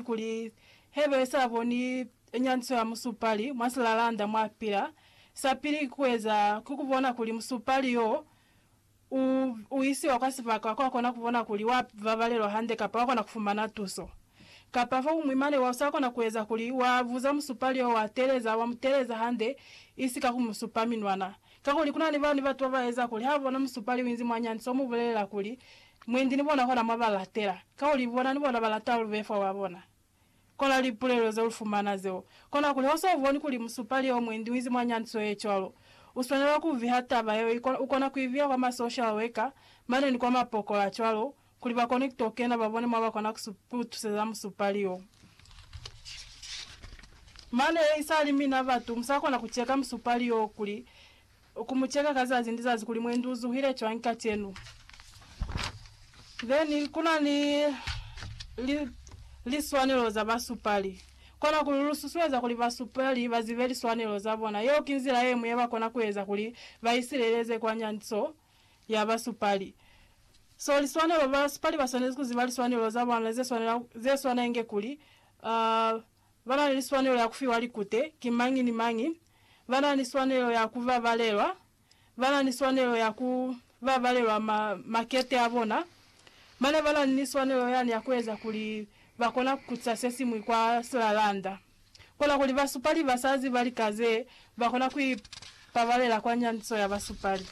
kuli hebe sa boni nyanyiso ya musupali mwa silalanda mwa pila, sa pili ki kueza ki kubona kuli musupali yo u, u isiwa kwa sibaka kwa kona kubona kuli wa babalelwa hande kapa wa kona kufumana tuso. Kapa fokuñwi mane wa sa kona kueza kuli wa buza musupali yo wa teleza, wa mu teleza hande, isi ka ku mu supa minwana. Kakuli kuna ni bani batu ba ba eza kuli ha bona musupali u inzi mwa nyanyiso, u mu bulelela kuli, Mwendi ni bona kona mwa ba latela, kakuli bona ni bona ba lata lu be fa wa bona. Kola lipulelo ze lu fumana zeo. Kona kuli ha u sa boni kuli musupali yeo mwendi u inzi mwa nyandiso ye cwalo, u swanela ku viha taba yeo, i kona, u kona ku i viha kwa ma social worker mane ni kwa mapokola cwalo, kuli ba kone ku to kena ba bone mwa ba kona ku, ku lu tuseza musupali yo. Mane, i sa li mina batu, mu sa kona ku cheka musupali yo kuli Ku mu cheka ka zazi ni zazi kuli mwendi u zuhile cwañi kacenu. Then ku na ni li, liswanelo za basupali. Kona ku lu susueza kuli basupali ba zibe liswanelo za bona. Yeo ki nzila ye ñwi ye ba kona ku eza kuli ba isileleze kwa nyanyiso ya basupali. So liswanelo, basupali ba swanezi ku ziba liswanelo za bona ze swanela, ze swana inge kuli, uh, Ba na ni swanelo ya ku fiwa likute ki mañi ni mañi. Ba na ni swanelo ya ku babalelwa. Ba na ni swanelo ya ku babalelwa ma, makete a bona. Mane ba na ni swanelo yani ya ku eza kuli ba kona ku kutisa se siñwi kwa silalanda. Kona kuli basupali ba sa ziba lika ze ba kona ku ipabalela kwa nyandiso ya basupali.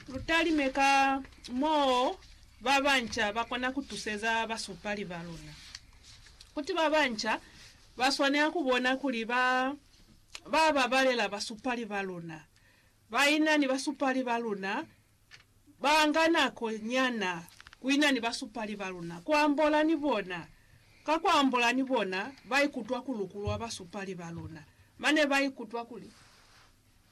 Lu talime ka moo ba banca ba kona ku tuseza basupali ba luna. Kuti ba banca ba swanela ku bona kuli ba ba babalela basupali ba luna. Ba ina ni basupali ba luna ba nga nako nyana ku ina ni basupali ba luna, ku ambola ni bona. Ka ku ambola ni bona, ba ikutwa ku lukulwa basupali ba luna, mane ba ikutwa kuli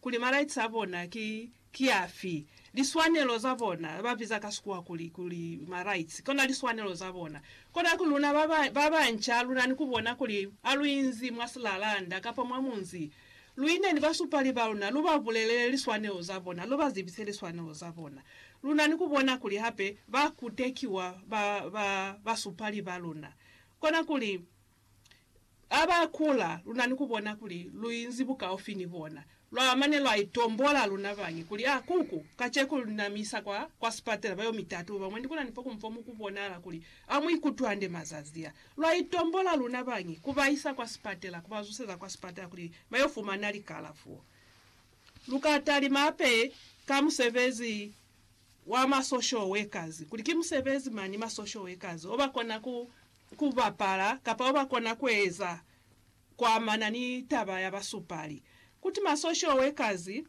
kuli ma-rights a bona ki, ki afi, liswanelo za bona, ba biza ka Sikuwa kuli, kuli ma-rights, kona liswanelo za bona. Kona ku luna ba ba, ba banca, lu na ni ku bona kuli a lu inzi mwa silalanda kapa mwa munzi, lu ine ni basupali ba luna, lu ba bulelele liswanelo za bona, lu ba zibise liswanelo za bona. Lu na ni ku bona kuli hape ba kutekiwa, ba, ba, basupali ba luna. Kona kuli. Ha ba kula, lu na ni ku bona kuli lu inzi bukaufi ni bona. Lwa mane lwa itombola luna bañi kuli, Ha ku ku, kaceko lu na mi isa kwa, kwa sipatela, ba yo mi tatuba. Mwendi ku na ni fo ku mpo mu ku bonahala kuli ha mu ikutwi hande mazazi a. Lwa itombola luna bañi ku ba isa kwa sipatela, ku ba zuseza kwa sipatela kuli ba yo fumana likalafo. Lu ka talima hape ka musebezi wa ma social workers, kuli ki musebezi mañi ma social workers o ba kona ku ku bapala kapa oba kona kueza kuamana ni taba ya basupali kuti masosho wekazi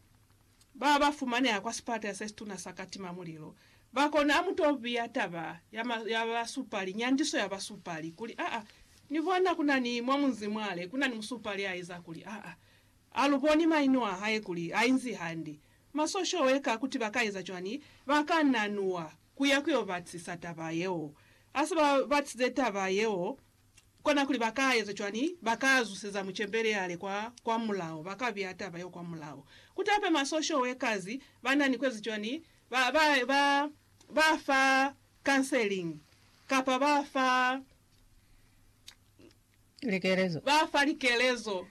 ba ba fumaneha kwa sipata se situna sa katima mulilo ba kona amu to biya taba ya ma ya basupali nyandiso ya basupali kuli aa ni bona kuna ni mwa munzi mwale kuna ni musupali a eza kuli aa a lu boni maino a hae kuli a inzi hande masosho weka kuti ba ka eza cwani ba ka nanua ku ya ku yo batisisa taba yeo. Ha se ba batisize taba yeo, kona kuli ba ka eza cwañi? Ba ka zuseza mucembeli ya le kwa, kwa mulao, ba ka biya taba yeo kwa mulao. Ku tape masosho we kazi, ba na ni ku eza cwañi? Ba, ba, ba, ba fa counseling, kapa ba fa. likelezo. Ba fa likelezo.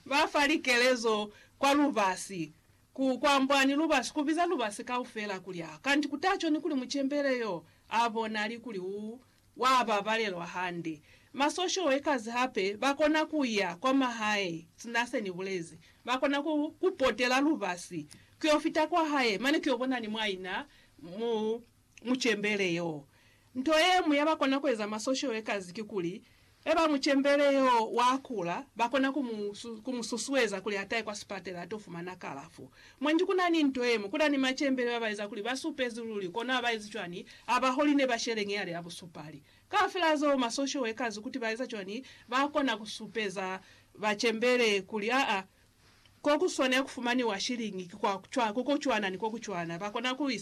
Ba fa likelezo kwa lubasi, ku kwambwa ni lubasi, ku biza lubasi kaufela kuli a kanti ku ta coni kuli mucembele yo a bonali kuli u wa babalelwa hande. Ma social workers hape ba kona ku ya kwa mahae, sina se ni bulezi. Ba kona ku ku potela lubasi, ku yo fita kwa hae, mane ku yo bona ni mwaina mu mucembele yo. Nto ye ñwi ya ba kona ku eza mwa social workers ki kuli, e ba mucembele yo wa kula, ba kona ku mu, ku mu susueza kuli a tahe kwa sipatela a to fumana kalafo. Mwa nji ku na ni nto ye ñwi, ku na ni macembele ba ba eza kuli ba supezi luli, kono ha ba ezi cwani ha ba holi ne ba sheleñi yale ya busupali. Kaufela zeo, ma social workers kuti ba eza cwani, ba kona ku supeza bacembele kuli aa, ko ku swanela ku fumaniwa shiliñi ki kwa cwa, ko ko cwana ni ko ku cwana. Ba kona ku isa